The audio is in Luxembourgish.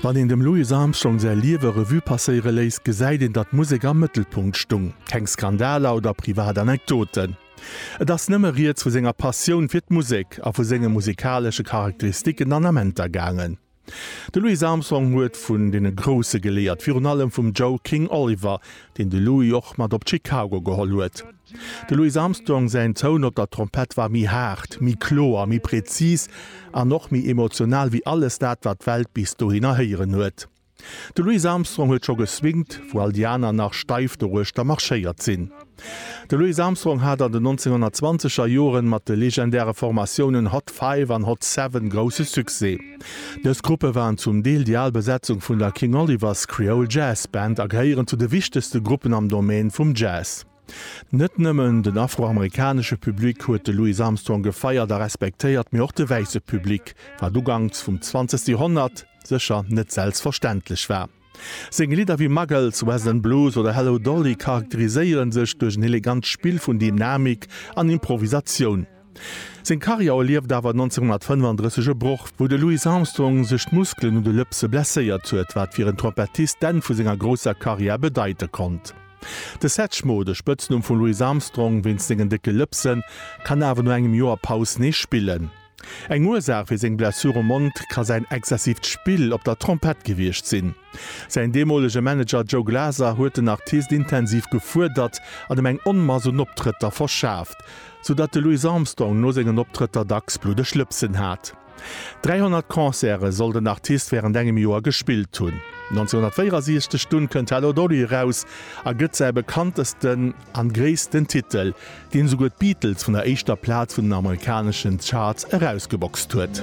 Wann een dem Louis Armstrong säi Liewe Revue passéiere léisst, gesäit een, datt d'Musek am Mëttelpunkt stung. Keng Skandaler oder privat Anekdoten. Et ass nëmme rieds vu senger Passioun fir d'Musek a vu senge musikalesche Charakteristiken an Amenter gaangen. De Louis Armstrong huet vun deene Grousse geléiert, virun allem vum Joe King Oliver, deen de Louis och mat op Chicago geholl huet. De Louis Armstrong säin Toun op der Trompett war méi haart, méi kloer, méi prezis an och méi emotional wéi alles dat, wat d'Welt bis dohinner héieren huet. De Louis Armstrong huet scho geswingt, wou all déi aner nach steif doruechter marschéiert sinn. De Louis Armstrong hat an den 1920 er Joren mat de legendäre Formatiounen Hot Five an Hot Seven grousse Succès. Dës Gruppe waren zum Deel déi al Besetzung vun der King Oliver's Creole Jazz Band a gehéieren zu de wichtegste Gruppen am Domaine vum Jazz. Net nëmmen den afroamerikanesche Public huet de Louis Armstrong gefeiert a respektéiert, mee och de wäisse Public, wat uganks vum zwanzegste Joerhonnert sécher net selbstverständlech war. Seng Lidder wéi Muggles, West End Blues oder Hello Dolly charakteriséiere sech duerch en elegant Spill vun Dynamik an Improvisatioun. Seng Karriär erlieft awer 1935 e Broch, wou de Louis Armstrong sech d'Muskelen un de Lëpse blesséiert huet, wat fir en Trompettist d'Enn vu senger grousser Karriär bedeite konnt. De Satchmo, de Spëtznumm vum Louis Armstrong wéinst sengen décke Lëpsen, kann awer no engem Joer Paus nees spillen. Eng Ursaach fir seng Blessur um Mond ka säin exzessiivt Spill op der Trompett gewiescht sinn. Säin deemolege Manager Joe Glaser huet den Artist intensiv gefuerdert an em eng Onmass un Optrëtter verschaaft, sou datt de Louis Armstrong no sengen Optrëtter dacks bluddeg Lëpsen hat. 300 Concerte soll den Artist wärend engem Joer gespillt hunn. 1964 dunn kënnt Hello Dolly eraus a gëtt säi bekanntesten. an gréissten Titel, deen esouguer d'Beatles vun der éischter Plaz vun den amerikaneschen Charts erausgeboxt huet.